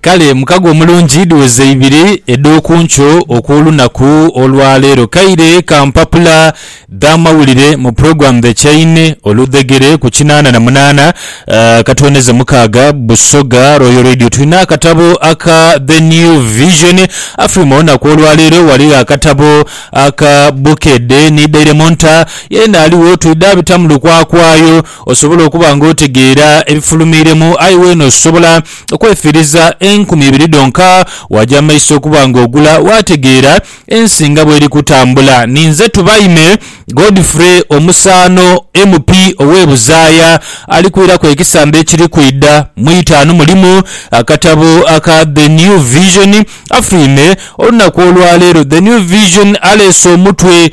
Kale mukago omulungi dhiweze ibiri edh'okunkyo okw'olunaku olwaleero. Kaire ka mpapula dh'amawulire mu Program The Chain oludhegere ku kinaana na munaana eh, katwoneze mukaaga Busoga Royal Radio. Tulina akatabo aka The New Vision. Afri mu lunaku olwaleero ghaligho akatabo aka Bukedde ni Daily Monitor. Yeena aligho twidha abita mu lukwakwayo. Osobola okuba ng'otegeera ebifulumiiremu, aye weene osobola okwefiiriza enkumi ibiri dhonka waaja amaiso okuba ng'ogula waategeera ensi nga bw'eri kutambula. Ninze Tubaime Godfrey omusaano MP ow'e Buzaaya ali kwiraku ekisamba ekiri kwidha mu itaanu mulimu akatabo aka The New Vision. Afulwime olunaku olwaleero. The New Vision aleese omutwe.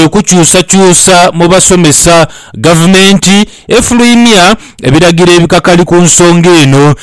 Okukyusakyusa mu basomesa, Gavumenti efulumya ebiragiro ebikakali ku nsonga eno.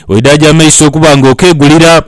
Oidaaje amaiso okuba nga okeegulira,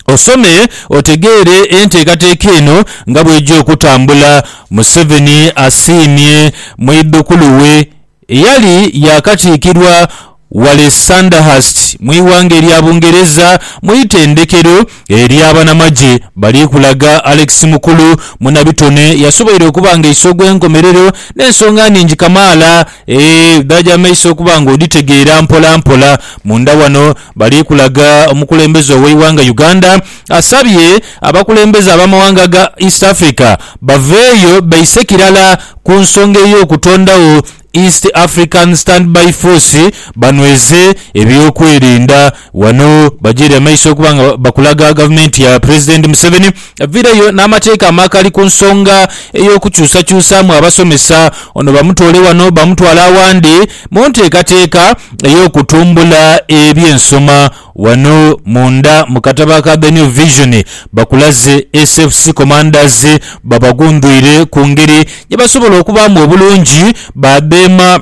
osome otegeere enteekateeka eno nga bw'eja okutambula, Museveni asiimye mwidhukulu we. Eyali yaakatiikirwa ghale Sandhurst mu ighanga erya Bungereza mu itendekero erya banamagye bali kulaga Alex Mukulu munabitone yasoboire okuba nga iso gw'enkomerero n'ensonga nhingi kamaala edhaja mu maiso okuba nga odhitegeera mpolampola. Munda wano bali kulaga omukulembeze ow'eighanga Uganda Asabye abakulembeze ab'amawanga ga East Africa baveeyo beise kirala ku nsonga ey'okutondagho East African Standby Force banweze ebyokwerinda. Ghano bagyeire amaiso okuba nga bakulaga gavumenti ya Pulezidenti Museveni eviireyo n'amateeka amakali ku nsonga ey'okukyusakyusaamu abasomesa. Ono bamutoole wano bamutwale awandi mu nteekateeka ey'okutumbula eby'ensoma. Ghano munda mu katabo aka The New Vision, bakulaze SFC Commanders babagundhwire ku ngeri gye basobola okubaamu obulungi badheema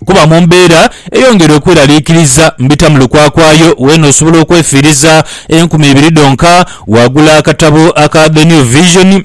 kuba mu mbeera eyongera okweraliikiriza mbitamu lukwakwayo weena osobola okwefiiriza enkumi ibiri dhonka. Waagula akatabo aka The New Vision.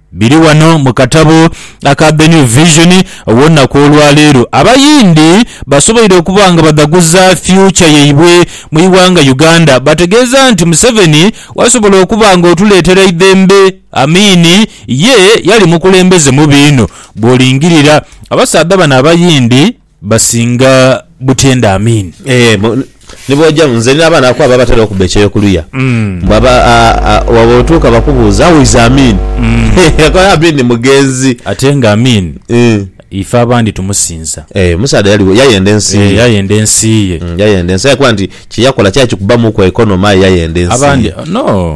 Biri ghano mu katabo aka The New Vision ow'olunaku olwaleero. Abayindi basoboire okuba nga badhaguza future yaibwe mu ighanga Uganda bategeeza nti Museveni wasobola okuba nga otuleetera eidhembe. Amin ye yali mukulembeze mubi inho bwolingirira. Abasaadha bano abayindi. Basinga butyende Amin. Eeh ni bw'oja, nze nina abaana abaku ababatera okubba ekyeyo ku luya. Mbu aba, a, a, wa bw'otuuka bakubuuza, How is Amin? Akola, Amin mugenzi. Ate nga Amin Eeh. ife abandi tumusinza. Eeh, omusaadha yali, yayenda ensi Eeh, ye. yayenda ensi ye. Yayenda ensi, aye yakoba nti kye yakola kyali kikubbamuuku economy aye yayenda ensi Abandi, ye. no.